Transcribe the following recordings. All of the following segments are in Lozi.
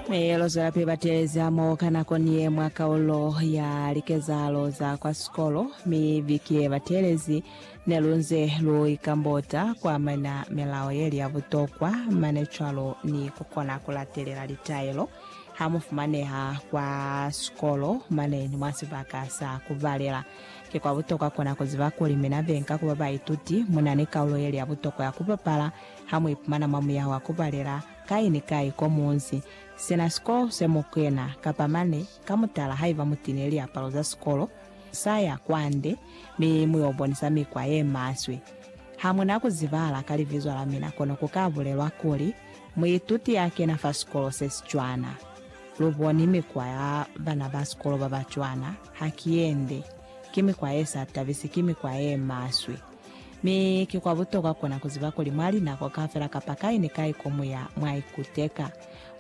Mihelo zwelapi bateleza mo ka nako ni ye mwa kaulo ya likezahalo za kwa sikolo, mi viki ye batelezi ne lu nze lu ikambota ku amana milao yeli ya butokwa, mane cwalo ni ku kona ku latelela litaelo ha mu fumaneha kwa sikolo mane ni mwa sibaka sa ku balela. Ki kwa butokwa ku na ku ziba kuli mina be nka ku ba baituti mu na ni kaulo yeli ya butokwa ya ku bapala ha mu ipumana mwa muyaho wa ku balela, Kai ni kai ko munzi, sina sikolo se mu kena, kapa mane, ka mutala haiba mu tine liapalo za sikolo, sa ya kwande, mi mu yo bonisa mikwa ye maswe. Ha mu na ku zibahala ka libizo la mina, kono ku ka bulelwa kuli, Muituti ya kena fa sikolo se si cwana. Lu boni mikwa ya bana ba sikolo ba ba cwana, ha ki yende. Ki mikwa ye sa tabisi, ki mikwa ye maswe. Mi ki kwa butokwa kona ku ziba kuli mwa linako kaufela kapa kai ni kai ko mu ya, mwa ikuteka.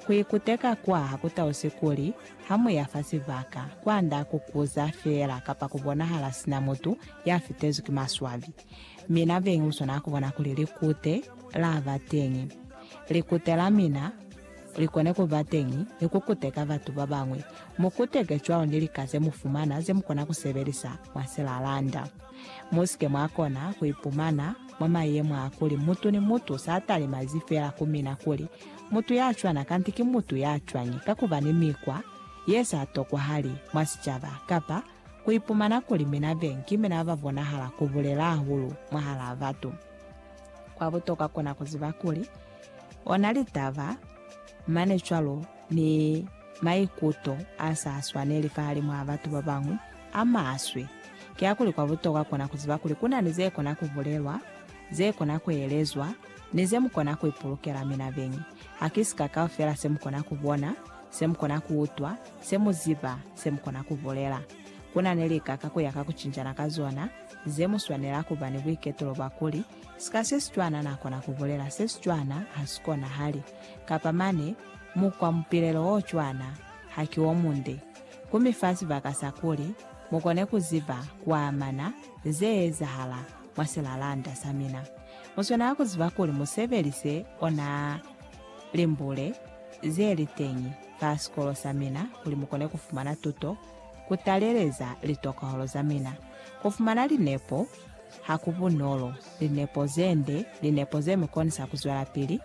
Ku ikuteka kwa ha ku tausi kuli, ha mu ya fa sibaka, kwa nda ku kuza feela kapa ku bonahala sina mutu ya fitezwi ki maswabi. Mi na beñi u swana ku bona kuli likute la ba teñi. Likute la mina li kone ku ba teñi ni ku kuteka batu ba bañwi. Mu kuteke cwalo ni lika ze mu fumana ze mu kona ku sebelisa mwa silalanda. Mu si ke mwa kona ku ipumana mwa mayemo a kuli mutu ni mutu sa talemazi fela ku mina kuli mutu ya cwana kanti ki mutu ya cwañi ka ku ba ni mikwa ye sa tokwahali mwa sicaba kapa ku ipumana kuli mina be ki mina ba bonahala ku bulela hahulu mwahalaa batu. Kwa butokwa kona ku ziba kuli ona litaba, mane cwalo, ni maikuto a sa swaneli fahalimwaa batu ba bañwi a maswe, kiakuli kwa butokwa kona ku ziba kuli ku na ni ze kona ku bulelwa, ze kona ku elezwa, ni ze mu kona ku ipulukela mina beñi. Ha ki sika kaufela se mu kona ku bona, se mu kona ku utwa, se mu ziba, se mu kona ku bulela. Ku na ni lika ka ku ya ka ku cinjana ka zona, ze mu swanela ku ba ni buiketulo bwa kuli, Sika se si cwana na kona ku bulela se si cwana, ha si konahali. Kapa mane, Mukwa mupilelo o cwana ha ki o munde, ku mi fa sibaka sa kuli mu kone ku ziba kwa amana ze ezahala mwa silalanda sa mina. Mu swanela ku ziba kuli mu sebelise ona limbule ze li teñi fa sikolo sa mina kuli mu kone ku fumana tuto, ku taleleza litokahalo za mina. Ku fumana linepo ha ku bunolo, linepo ze nde, linepo ze mi konisa ku zwelapili,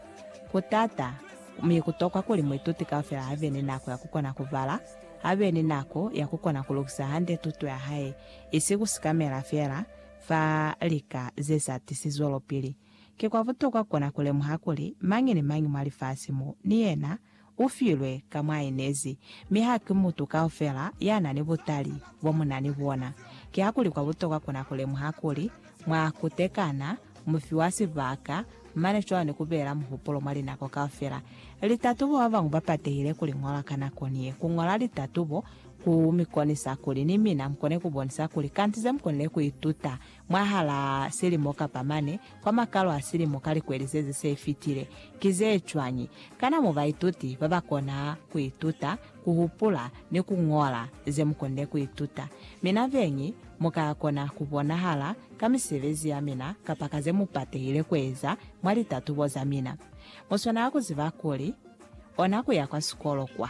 Ku taata, mi ku tokwa kuli muituti kaufela a be ni nako ya ku kona ku bala, a be ni nako ya ku kona ku lukisa hande tuto ya hae, isi ku sikamela feela fa lika ze sa tisi zwelopili. Ki kwa butokwa ku kona ku lemuha kuli mañi ni mañi mwa lifasi mo, ni yena U filwe ka mwa inezi, mi ha ki mutu kaufela ya na ni butali bo mu na ni bona. Kiakuli kwa butokwa ku na ku lemuha kuli, mwa kutekana, mu fiwa sibaka, mane cwalo ni ku beela muhupulo mwa linako kaufela. Litatubo ba bañwi ba patehile ku li ñola ka nako niye. Ku ñola litatubo ku mi konisa kuli ni mina mu kone ku bonisa kuli kanti ze mu konile ku ituta mwahalaa silimo kapa mane kwa makalo a silimo ka likweli zezi se fitile, ki ze cwañi? Kana mu baituti ba ba kona ku ituta ku hupula ni ku ñola ze mu konile ku ituta? Mina beñi mu ka kona ku bonahala ka misebezi ya mina kapa ka ze mu patehile ku eza mwa litatubo za mina. Mu swanela ku ziba kuli, ona ku ya kwa sikolo kwa.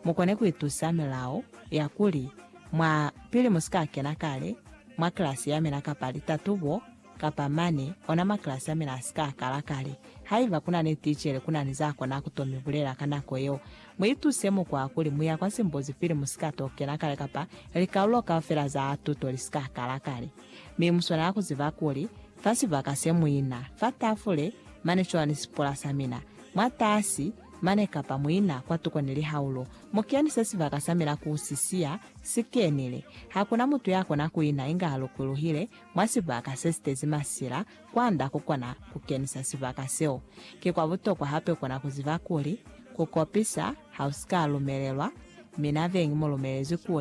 mu kone ku itusa milao ya kuli, Mwa, pili mu si ka kena kale mwa kilasi ya mina kapa litatubo, kapa mane, ona makilasi a mina a si ka kala kale. Haiba ku na ni ticele, ku na ni za kona ku to mi bulela ka nako yeo. Mu ituse mukwa wa kuli mu ya kwa simbuzi pili mu si ka to kena kale kapa likaulo kaufela za tuto li si ka kala kale. Mi mu swanela ku ziba kuli, fa sibaka se mu ina, fa tafule, mane cwalo ni sipula sa mina, mwatasi, mane kapa muina kwatuko ni lihaulo, mukeni se sibaka sa mina ku si siya si kenile. Hakuna mutu ya kona kuina inga a lukuluhile mwa sibaka se sitezi masila kwanda kukona ku kenisa sibaka seo. Ki kwa butokwa hape kona kuziba kuli, ku kopisa ha usika lumelelwa, mina beñi mu lumelezi kuli,